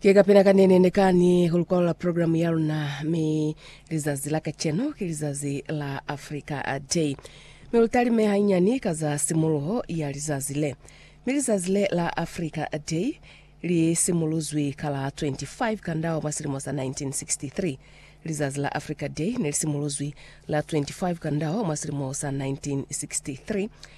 Ki kapena kanene ne ka ni ku lukwalo la program ya luna, mi lizazi la kacenu ki lizazi la Africa Day. Mi lu talime hainyani ka za simuluho ya lizazi le. Mi lizazi le la Africa Day li simuluzwi ka la 25 Kandau mwa silimo sa 1963. Lizazi la Africa Day ne li simuluzwi la 25 Kandau mwa silimo sa 1963,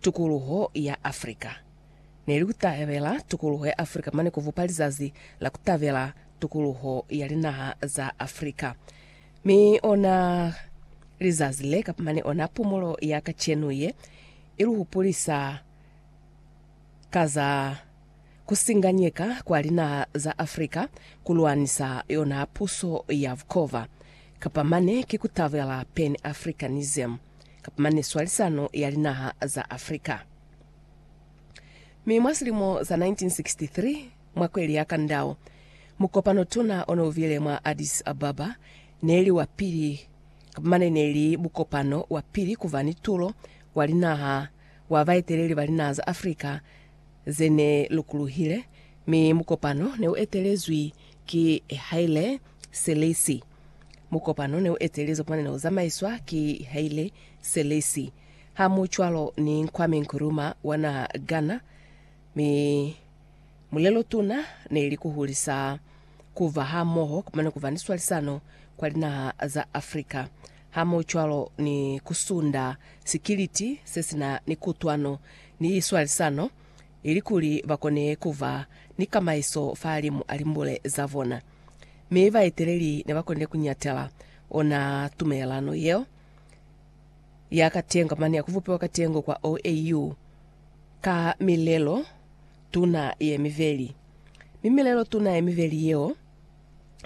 tukuluho ya Afrika. Ne li kutabela tukuluho ya Afrika mane kubupa lizazi la kutabela tukuluho ya linaha za Afrika. Mi ona lizazi le kapa mane ona pumulo ya kacenu ye iluhupulisa ka za kusinganyeka kwa linaha za Afrika kulwanisa yona puso ya bukova, kapa mane ki kutabela pan-Africanism. kapa mane swalisano ya linaha za Afrika. Mi mwa silimo sa 1963, mwa kweli ya Kandao, mukopano tuna one ubile mwa Addis Ababa, neli wa pili, kapa mane neli mukopano wa pili kuva ni tulo wa linaha wa baeteleli ba linaha za Afrika zene lukuluhile, mi mukopano ne u etelezwi ki Haile Selassie. Mukopano ne u etelizwe mwa ne u zamaiswa ki Haile Selassie, hamucwalo ni Kwame Nkrumah wa naha Ghana, mi mulelotuna ne li ku hulisa ku ba hamoho mane ku ba ni swalisano kwa linaha za Afrika, hamucwalo ni ku sunda sikiliti se si na ni kutwano ni swalisano ilikuli ba kone ku ba ni kamaiso fahalimu a limbule za bona. Mi baeteleli ne ba konile ku ñatela ona tumelelano yeo ya katengo mane ya ku bupiwa katengo kwa OAU ka milelo tuna ye mibeli. Mi milelo tuna ye mibeli yeo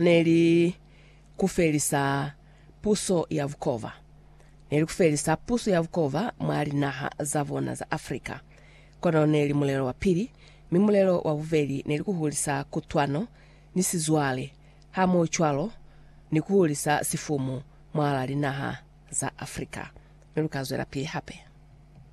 ne li ku felisa puso ya bukova. Ne li ku felisa puso ya bukova mwa linaha za bona za Africa. Kono neli mulelo wa pili, mi mulelo wa bubeli neli kuhulisa kutwano ni sizwale, hamohocwalo ni kuhulisa sifumu mwahala linaha za Afrika. Mi lukazwelapili hape.